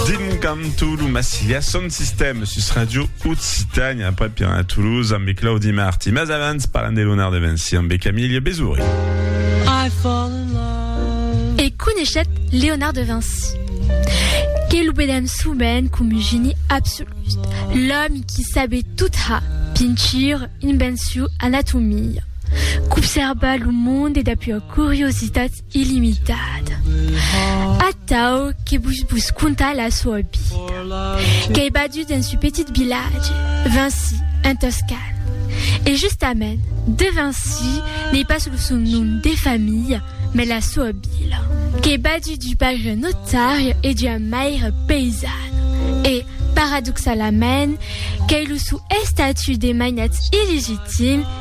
Dingantu lo Massilia son sistèma sus Radio Occitània après Piran a Toulouse amb Claudi Marti. Mas abans parlant de l'onar de Vinci amb Camille Besouri. E coneishèt Léonard de Vinci. Que lo vedèm souvent com un geni absolut, l'òmi qui sabé tot ha, pintir, invenciu, anatomia, qu'observa lo monde dapua curiositat illimitada, atau que vos vos contar la soa vida. Qu'ei badut dens un petit vilatge, Vinci, en Toscana. E justament, de Vinci n'ei pas lo son nom de familha, mas la soa vila. Qu'ei badut d'un paire notari e d'ua maire paisana. E, paradoxalament, qu'ei lo son estatut de mainatz illegitim,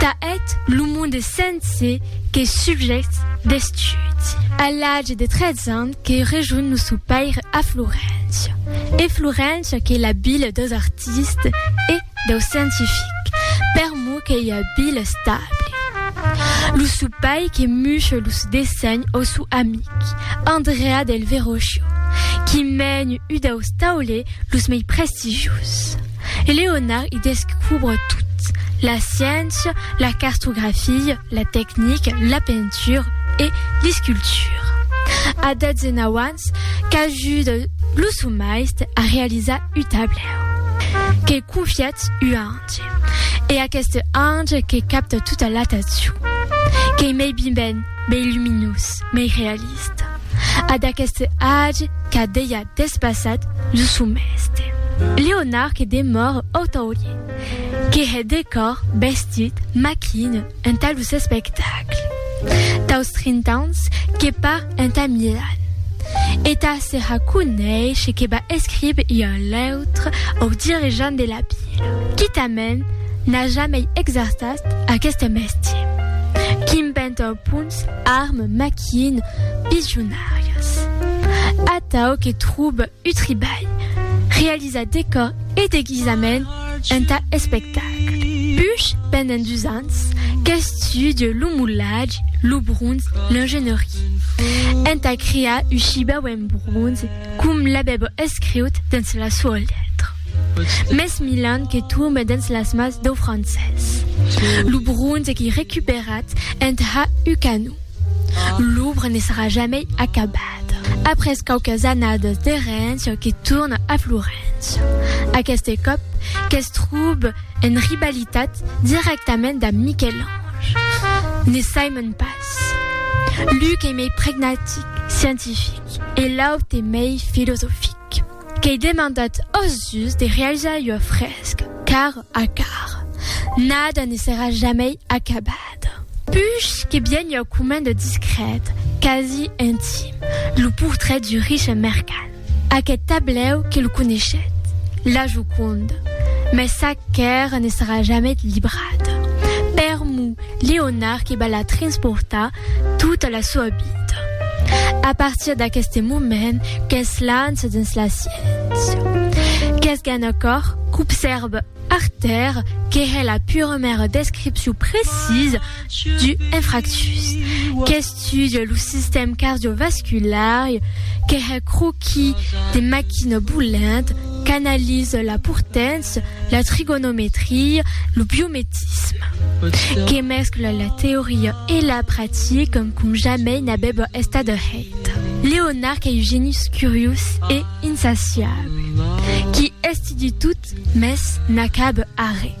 Tà eth lo monde sense que subjècts d'estudi. A l'age de 13 ans que rejonh lo sou paire a Floréncia. E Floréncia qu'ei la vila deus artistes e deus scientifics, per mo qu'ei ua vila estable. Lo sou pair que muche los dessenhs au sou amic, Andrea del Verrocchio, qui mèn u deus taulers los mei prestigiosi. e Leonard i descubre tot, la sciéncia, la cartografia, la tecnica, la pentura e l'escultura. A 19 ans qu'ajuda lo son maiste a realizar u tablèu que confiatz u ange e aqueste ange que capta tota l'atencion, qu'ei mei biben, mei luminós, mei realista. Ad aqueste age qu'a dejà despassat lo son mèste. Leonard que demòre otaulier, que hè decòr, vestit, maquina entà los espectacles. Daus trint'ans que par entà Milan. E tà serra coneishe que va escribe ua lèutra au dirigent de la Pila. Quitament n'a jamei exerçat aqueste mèstier. Quin pènt au pont Sos armes maquien visionàrias. Atau que trouba un tribalh, realizar decòr e deguisament entà espectacle. Push pendent dus ans qu'estudie lo molatge, lo bronze, l'engenhorier, entà crear un shibau en bronze com l'avèba escriut dens la soa letra. Mès Milan que tombe dens las mas deu francés. Lo bronze qu'ei recuperat en ha Hucanau. L'obra ne sarà jamei acabat. Après quauques annadas de Rennes que torna a Florence. Aqueste còp que's trobe en rivalitat directament damb Michel-Ange. Ne saimon pas. L'un qu'ei mei pragmatic, scientific, e l'aute mei filosofic. Qu'ei demandat ós dus de realizar ua fresca car a car. Nada ne serà jamei acabada. Puish que bien ua comenda discrèt, quasi intim, lo portret du riche mercant. Aqueth tablèu que lo coneishet, La Joconda, mès sac qu'èra ne serà jamei librada. Permu Leonard que va la transportar Tota la soa vida. A partir d'aqueste moment qu'es lança dins la sciéncia. Qu'es gan a còr qu'obsèrve Arter que hè la puremèra descripcion precisa du infractus, qu'estudia lo sistèm cardiovasculari, que hè croquis de maquina bolent, qu'analise la portància, la trigonometria, lo biometisme, que mescla la teoria e la practica com jamai n'avèva estat hèit. Leonard qu'ei un genís curiós e insaciable, qui estudi tot, mès n'acaba arré.